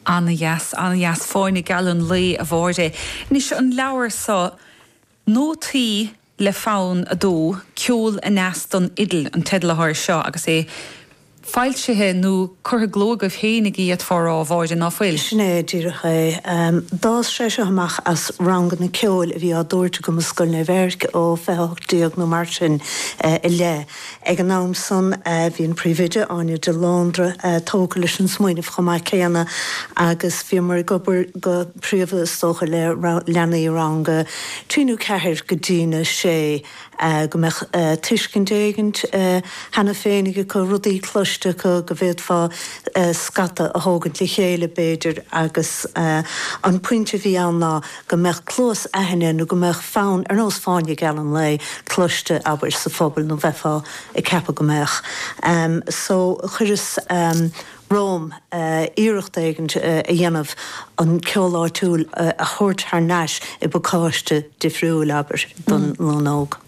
Ana-dheas, ana-dheas. Fáinne geal an lae, a Mháire. Anois, an leabhar so, Nótaí le Fonn a Dó, Ceol Aneas don Fhidil an teideal atá air seo agus é foilsithe nó curtha i gcló agaibh féinig, d'fhéadfá rá, a Mháire, ná fuil? Sin é díreach é. D'fhás sé seo amach as ranganna ceoil a bhí á dtabhairt agam i Scoil Naomh Eirc ó fiche ocht déag nó mar sin i leith. Ag an am san bhí an Príomhoide, Áine de Londra, tógtha leis an smaoineamh chomh maith céanna agus bhíomar ag obair go príomha is dócha le leanaí i rang a trí nó ceathair go dtín a sé go mbeadh tuiscint éigin cheana féinig acu, rudaí cloiste acu go bhféadfá scata a thógaint le chéile b'fhéidir agus an pointe a bhí ann ná. go mbeadh cluasaithne nó go mbeadh fonn, ar nós fáinne geal an lae, cloiste, abair, sa phobal nó bheifeá ag ceapadh go mbeadh. So, chuireas romham iarracht éigin a dhéanamh an ceol áitiúil a thabhairt thar nais i bpacáiste difriúil, abair, don nglún óg.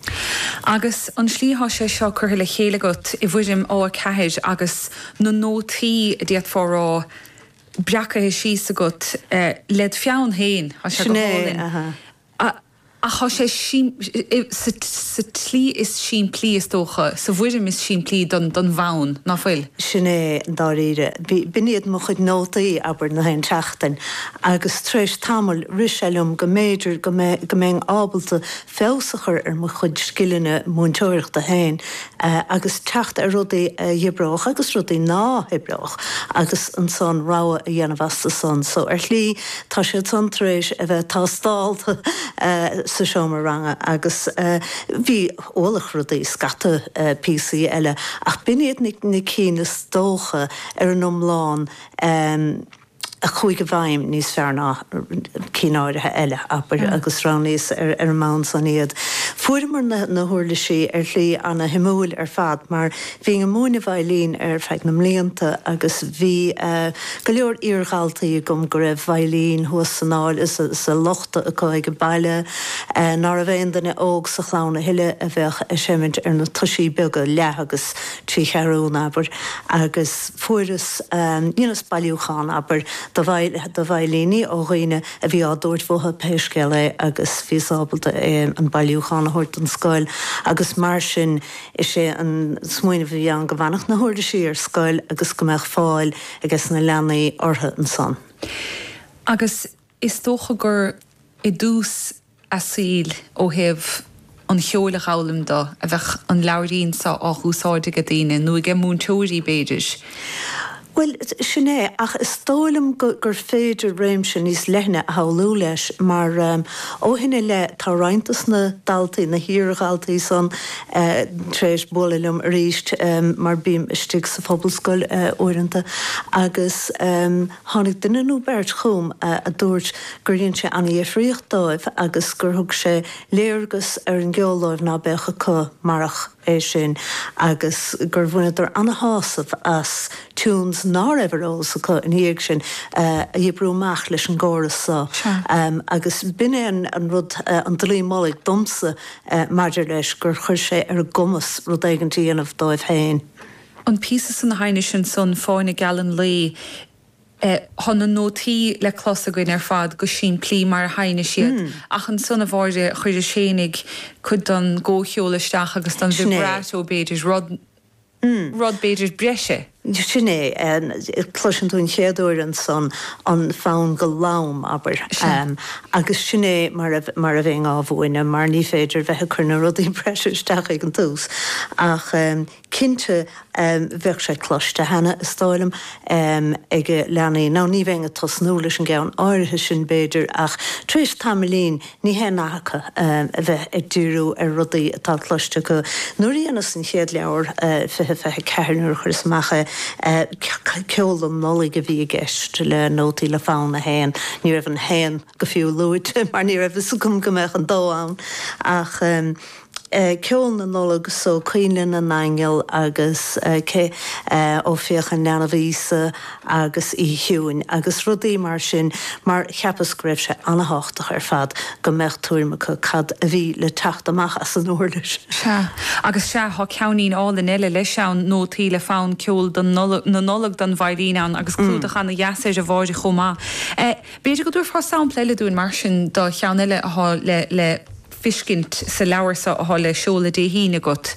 Agus an slí atá sé seo curtha le chéile agat i bhfoirm A4 agus na nótaí, d'fhéadfá rá, breacaithe síos agat led pheann féin. Tá sé go hálainn. Sin é. Ach tá sé sa tslí is simplí, is dócha, sa bhfoirm is simplí don bhfonn, ná fuil? Sin é, dáiríre. B'in iad mo chuid nótaí, abair, na haon tseachtain, agus tar éis tamaill rith sé liom go mb'fhéidir go mbeinn ábalta feabhas a chur ar mo chuid scileanna múinteoireachta féin agus teacht ar rudaí a dh'oibreodh agus rudaí ná hoibreodh agus ansan rogha a dhéanamh astu san. So ar shlí tá siad san tar éis a bheith tástálta sa seomra ranga agus bhí ualach rudaí scata píosaí eile ach b'in iad na cinn is dócha ar an iomlán. a chuaigh i bhfeidhm níos fearr ná cinn áirithe eile, abair, agus roghnaíos ar an mbonn san iad. Fuaireamar na huirlisí ar shlí ana-shuimiúil ar fad mar bhínn ag múineadh veidhlín ar feadh na mblianta agus bhí go leor iar-dhaltaí agam go raibh veidhlín thuas san áil sa lochta acu age baile ná raibh aon duine óg sa chlann a thuilleadh a bheadh ag seimint ar na toisí beaga leath agus trí cheathrún, abair, agus. Fuaireas, dheineas bailiúchán, abair, de veidhlíní ó dhaoine a bhí á dtabhairt uathu pé scéal é agus bhíos ábalta é, an bailiúchán, a thabhairt don scoil agus mar sin is é an smaoineamh a bhí ann go bhfanfadh na huirlisí ar scoil agus go mbeadh fáil ages na leanaí orthu ansan. Agus Is dócha gur i dtús a saoil, ó thaobh an cheoil a dh'fhoghlaim dó, a bheadh an leabhairín so á dh'úsáid age daoine, nó age múinteoirí, b'fhéidir. Bhuel, sin é, ach is dó' liom gur féidir réimse níos leithne a shamhlú leis, mar ó shin i leith tá roinnt de sna daltaí, na hiar-dhaltaí san, tar éis bualadh liom arís, mar bím istigh sa Phobalscoil uaireanta, agus. Tháinig duine nó beirt chugam a dúirt gur dhein sé an-dhifríocht dóibh agus gur thug sé léargas ar an gceol dóibh ná beadh acu marach é sin agus gur bhaineadar an-shásamh as tunes ná raibh ar eolas acu ina dhiaidh sin a oibriú amach leis an gcóras so agus b'shin é an rud, an dlaoi mullaigh domsa maidir leis, gur chuir sé ar a gcumas rud éigint a dhéanamh dóibh féin. an píosa san a sheinnis ansan Fáinne Geal an Lae. Thá na nótaí le clos againn ar fad go simplí mar a sheinneadh siad ach ansan a Mháire chuir an Séimí cuid don gcomhcheol isteach agus don vibrato b'fhéidir, rud, rud b'fhéidir breise. Sin é. Cloiseann tú an chéad uair ansan an fonn go lom, abair, agus sin é mar a, mar a bheinn á mhúineadh mar ní féidir bheith ag cur na rudaí breise isteach ag an tús ach. Cinnte, bheadh sé cloiste cheana, is dóigh liom, ag leanaí, nó ní bheinn ag tosnú leis an gceann áirithe sin, b'fhéidir, ach tar éis tamaillín, níl aon nath acu a bheith ag díriú ar rudaí atá cloiste acu. Nuair a dheineas an chéad leabhar, fiche fiche ceathair, nuair a chuireas amach é, ceol don Nollaig a bhí i gceist, le nótaí le Fonn a hAon. Ní raibh an haon fiú luaite, mar ní raibh fhios agam go mbeadh an dó ann, ach. Ceol na Nollag so, Coinnle na nAingeal agus Seoithín an Leanbh Íosa agus Oíche Chiúin agus rudaí mar sin mar cheapas go raibh sé ana-tháchtach ar fad go mbeadh tuairim acu cad a bhí le teacht amach as an uirlis. Sea, agus sea, thá ceainnín álainn eile leis ann, nótaí le fonn ceol don Nollag, na Nollag don veidhlín ann agus clúdach ana-dheas air a Mháire chomh maith. B'fhéidir go dtabharfá sampla eile dúinn mar sin do cheann eile athá le, le. feiscint sa leabhar seo athá le seoladh Dé hAoine agat?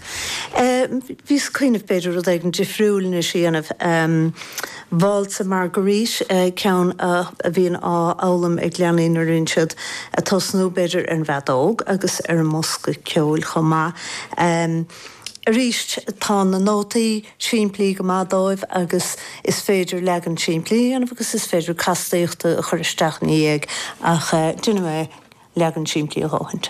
Bhíos ag cuimhneamh b'fhéidir rud éigint difriúil anois a dhéanamh. Válsa Marguerite, ceann a bhíonn á fhoghlaim ag leanaí nuair a bhíonn siad ag tosnú, b'fhéidir ar an bhfeadóg agus ar an mbosca ceoil chomh maith. Arís tá na nótaí. simplí go maith dóibh agus is féidir leagan simplí a dhéanamh agus is féidir castaíochta a chur isteach ina diaidh ach déanfaidh mé leagan simplí a dhóthain.